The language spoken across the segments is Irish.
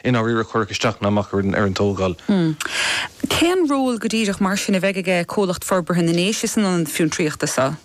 I ndáiríre, chuirfeadh isteach ná amach ar an tógáil. Cén ról go díreach mar sin a bheidh aige Comhlacht Forbartha na nDéise san Ionad Fiontraíochta seo?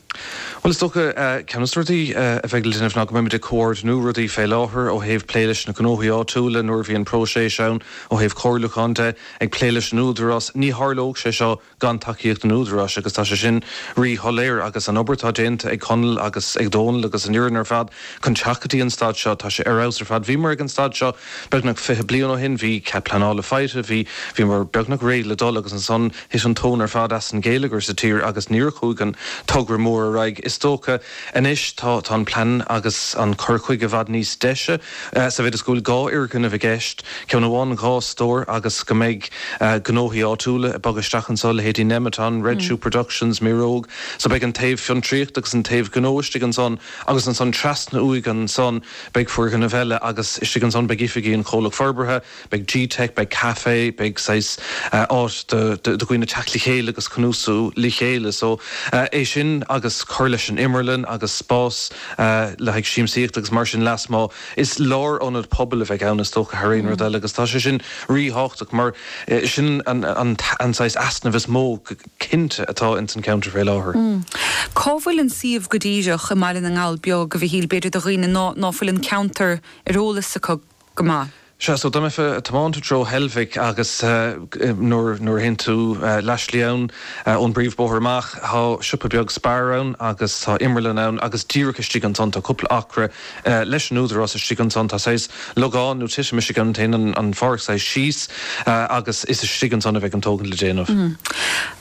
Bhuel is dócha ceann de na rudaí a bheidh le déanamh ná go mbeimid ag comhordnú rudaí fé láthair ó thaobh plé leis na gnóthaí áitiúla nuair a bhíonn próiseas ann ó thaobh comhairliúcháin de, ag plé leis an Údarás, ní tharlódh sé seo gan tacaíocht an Údaráis agus tá sé sin rí-shoiléir agus an obair atá déanta ag Conall agus ag Dónall agus an fhoireann ar fad chun teacht go dtí an staid seo, tá sé ar fheabhas ar fad. Bhíomar ag an staid seo beagnach fiche bliain ó shin, bhí cead pleanála faighte, bhí, bhíomar beagnach réidh le dul agus ansan thit an tóin ar fad as an ngeilleagar sa tír agus níor chuaigh an togra mór ar aghaidh. Is dócha anois tá, tá an plean agus an cur chuige i bhfad níos deise, Sa mhéid is go bhfuil dhá fhoirgneamh i gceist, ceann amháin dhá stór agus go mbeidh gnóthaí áitiúla ag bogadh isteach anseo, leithéidí Nemeton, Red Shoe Productions, Mireog, so beidh an taobh fiontraíochta agus an taobh gnó istigh ansan agus ansan trasna uaidh ansan beidh foirgneamh eile agus istigh ansan beidh oifigí an Chomhlacht Forbartha, Beidh G-Teic, beidh café, beidh saghas áit do dhaoine teacht le chéile agus cnuasú le chéile so é sin agus cur leis an imirlann agus spás le haghaidh siamsaíochta agus mar sin lasmuigh. Is lárionad pobail a bheidh ann is dócha thar aon rud eile agus tá sé sin ríthábhachtach mar sin an saghas easnamh is mó go cinnte atá ins an ceantar fé láthair. Cá bhfuil an suíomh go díreach i mBaile na nGall Beag, a Mhichíl, b'fhéidir do dhaoine ná fuil an ceantar ar eolas acu? go maith. Sea, so dá mbeifeá ag tiomáint i dtreo Heilbhic agus nuair a théann tú leathslí ann ón bpríomhbhóthar amach tá siopa beag Spar ann agus tá imirlann ann agus díreach istigh ansan tá cúpla acra leis an Údarás istigh ansan tá sé saghas logán nó titim istigh ann, téann an pháirc saghas síos agus is istigh ansan a bheidh an tógaint le déanamh.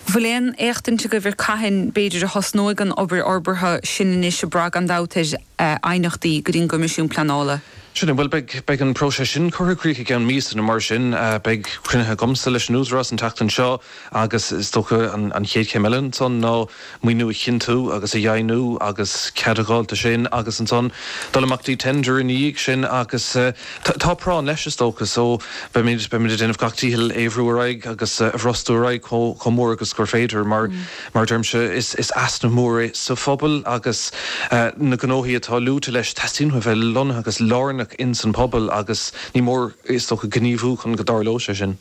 Bhfuil aon éachtaint agaibh ar cathain b'fhéidir a thosnóidh an obair fhorbartha sin anois, ag brath, gan dabht ar. aighneachtaí go dtí an gCoimisiún Pleanála. Sin é, bhuel, beidh, beidh an próiseas sin curtha i gcrích i gceann míosa nó mar sin. Beidh cruinnithe agamsa leis an Údarás an tseachtain seo agus is dócha an chéad chéim eile ansan ná maoiniú a chinntiú agus a dheimhniú agus cead a dh'fháil do sin agus ansan dul amach dtí tender ina dhiaidh sin agus tá práinn leis is dócha so beimid, beimid ag déanamh gach dícheall é a bhrú ar aghaidh agus a bhrostú ar aghaidh chomh mór agus gur féidir mar Mar a deirimse, is easnamh mór é sa phobal agus na gnóthaí atá luaite leis, teastaíonn uathu a bheith lonnaithe agus lárnach ins an bpobal agus ní mór, is dócha, gníomhú chun go dtarlóidh sé sin.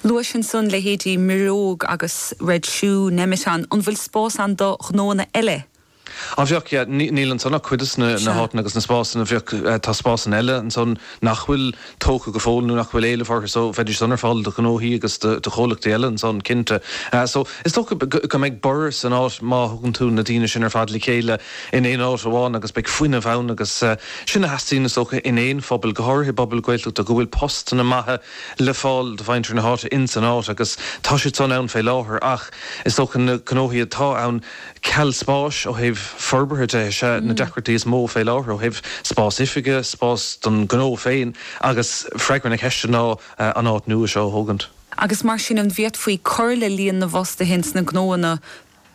Luaís ansan leithéidí Mireog agus Red Shoe, Nemeton, an bhfuil spás ann do ghnóanna eile? Á bheadh. Yeah, níl ansan ach cuid de na háiteanna agus na spásanna, bheadh, tá spásanna eile ansan nach bhfuil tógtha go fóill nó nach bhfuil éileamh orthu so bheidís san ar fáil do ghnóthaí agus do chomhlachtaí eile ansan, cinnte. So, is dócha go mbeidh borradh san áit má thugann tú na daoine sin ar fad le chéile in aon áit amháin agus beidh fuinneamh ann agus sin a theastaíonn is dócha in aon phobal, go háirithe i bpobal Gaeltachta, go bhfuil postanna maithe le fáil do mhuintir na háite insan áit agus tá siad san ann fé láthair ach is dócha na gnóthaí atá ann, Ceal spáis ó thaobh forbartha de is é na deacrachtaí is mó fé láthair ó thaobh spás oifige, spás don ghnó féin agus freagra na ceiste ná an áit nua seo a thógaint. Agus mar sin, an bhféadfaí cur le líon na bhfostaithe ins na gnóanna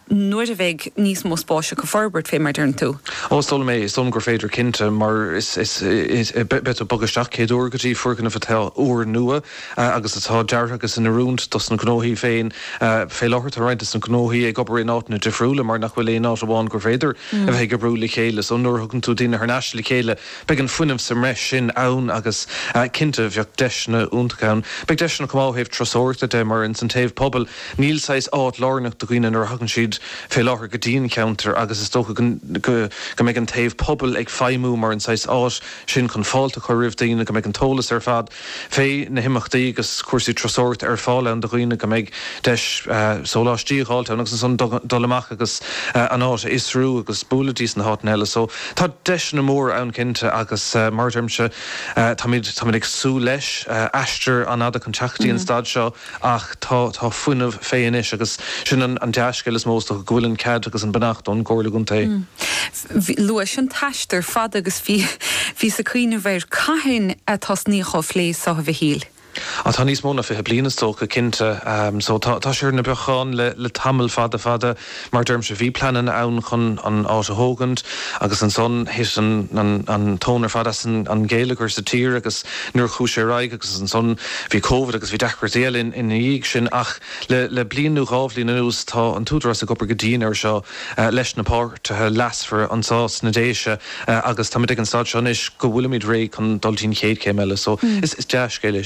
nuair a bheidh níos mó spáis acu forbairt fé mar deireann tú? Ó, is dóigh liom é, is dóigh liom gur féidir cinnte, mar is, is, is, beidh tú ag bogadh isteach céad uair go dtí foirgneamh atá úr nua, agus atá deartha agus in oiriúint dos na gnóthaí féin. Fé láthair tá roinnt des na gnóthaí ag obair in áiteanna difriúla mar nach bhfuil aon áit amháin gur féidir a bheith ag oibriú le chéile. So nuair a thugann tú daoine thar n-ais le chéile beidh an fuinneamh sa mbreis sin ann agus cinnte bheadh deiseanna iontacha ann. Beidh deiseanna chomh maith ó thaobh turasóireachta de mar ins an taobh pobail níl saghas áit lárnach do dhaoine nuair a thagann siad fé láthair go dtí an cheantar agus is dócha go mbeidh an taobh pobail ag feidhmiú mar an saghas áit sin chun fáilte a chur roimh daoine, go mbeidh an t-eolas ar fad. fé na himeachtaí agus cúrsaí turasóireachta ar fáil ann do dhaoine, go mbeidh deis sóláistí a dh'fháilt ann agus ansan dul amach agus an áit a fhiosrú agus bualadh dtí sna háiteanna eile so tá deiseanna móra ann cinnte agus mar a deirimse táimid, táimid ag súil leis, aistear an-fhada chun teacht dtí an staid seo ach tá, tá fuinneamh fé anois agus sin an, an dea-scéal is mó is dócha go bhfuil an cead agus an beannacht ón gComhairle Contae. Luais an t-aistear fada agus bhíos ag cuimhneamh ar cathain a tosnaíodh á phlé seo, a Mhichíl? Ó tá níos mó ná fiche bliain is dócha, cinnte. So tá sé ar na bacáin le tamall fada fada. Mar a deirimse, bhí pleanna ann chun an áit a thógaint agus ansan thit an tóin ar fad as an ghéilleagar sa tír agus nuair a chuaigh sé ar aghaidh agus ansan bhí Covid agus bhí deacrachtaí eile ina dhiaidh sin ach le bliain nó dhá bhliain anuas tá an tÚdarás ag obair go dian air seo leis na páirtithe leasmhara anso sna Déise agus táimid ag an staid seo anois go bhfuilimid réidh chun dul dtí'n chéad chéim eile so is dea-scéal é sin.